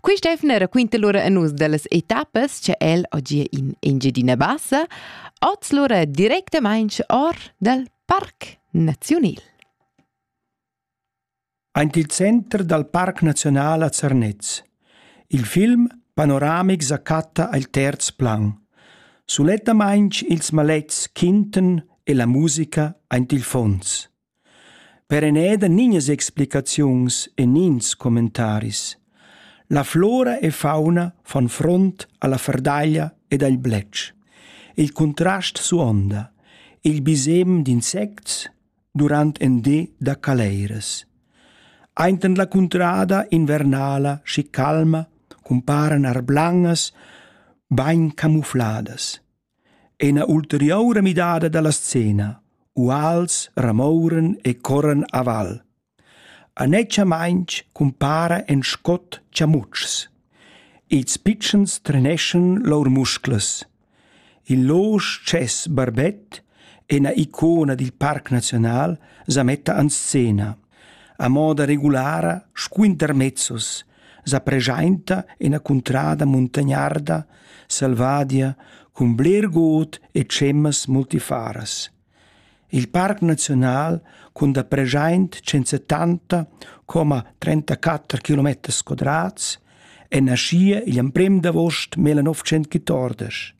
Quist'efna raquinta lura a nus dellas etappas cha el ho gia in Engiadina Bassa, oz lura directamaing or dal Parc Naziunal. Aint il center dal Parc Naziunal a Zernez. Il film panoramic sa chatta al terz plan. Sulettamaing ils malets quintan e la musica aint il fons. Per eneda nignas explicaziuns e nins commentaris. La flora e fauna fan front alla ferdaglia ed al bletsch. Il contrast suonda. Il bisem d'insects durant en di da caleiras. Ainten la cuntrada invernala schi calma cumparan arblangas bain camufladas. Ina ulteriura midada dalla scena. Uals ramouran e corran a val. Anetschamaintg cumpara en scot chamutschs. Ils pitschens treneschan lur musclas. Il losch tschess barbet, ina icona dil Parc Naziunal, sa metta en scena. A moda regulara sco intermezzos sa preschainta ina cuntrada muntagnarda selvadia cun bler god e tschemas multifaras. Il parc naziunal cun da preschaint 170 34 km quadrats è naschia igl emprem d'avost 1914